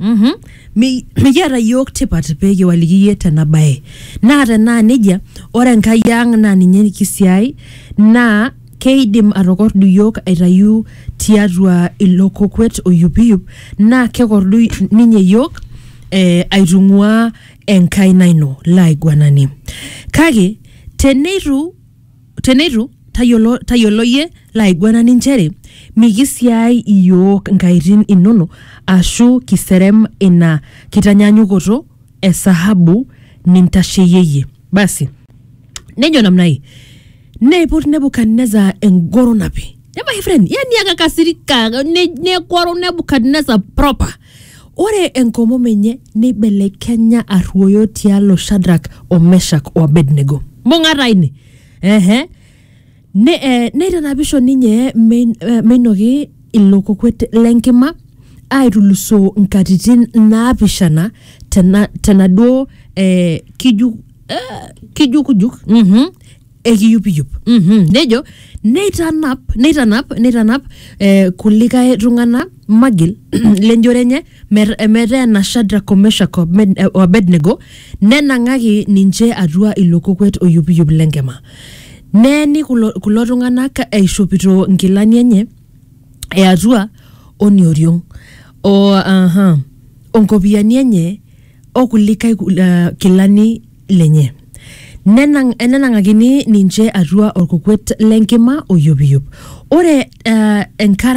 Mhm. Mi- mikiata yiok tipat pee kiwaliki iyie tena bae naa tenaa nejia ore enkai ang naa ninye nikisiai naa keidim atokordu yiok aitayu tiatua ilo kokwet oyupiyup naa kekordu ninye yiok eh, aitung'uaa enkaina ino laiguanani kake teneitu Teneitu, tayiolo, tayiolo iyie laiguanani nchere mikisiaai iyiook inkaitin inono ashu kiserem ina kitanyaanyukoto e sahabu nintasheyie. Basi nejo namna hii, neiput Nebukadnezar engoro napi. Nemae friend, yani akakasirika, ne- negoro Nebukadnezar proper. Ore enkomom enye neibelekenya arruoyo tialo Shadrak o Meshak o Abednego. Mbung'ata ine! Ehe. Ne, eh, neitanapisho ninye mein- eh, meinoki ilo kokwet le nkima aitulusoo nkatitin naapishana tena, tenaduo eh, kiju, eh, kijukujuk mhm, ekiyupiyup mm-hmm. nejo neitanap neitanap neitanap eh, kulikae tung'ana magil lenjore enye mer- eh, metaa ena shadrak o meshak o Abed- eh, o abednego nenang'aki ninche atua ilo kokwet oyupiyup lenkima neeni kulo, kulo tung'anak eishopito nkilani enye eatua onioriong o aha onkopiani enye okulikae kul- eh, kilani lenye Nenang, enenang'akini ninche atua olkukwet le nkima oyupiyup ore uh, enkara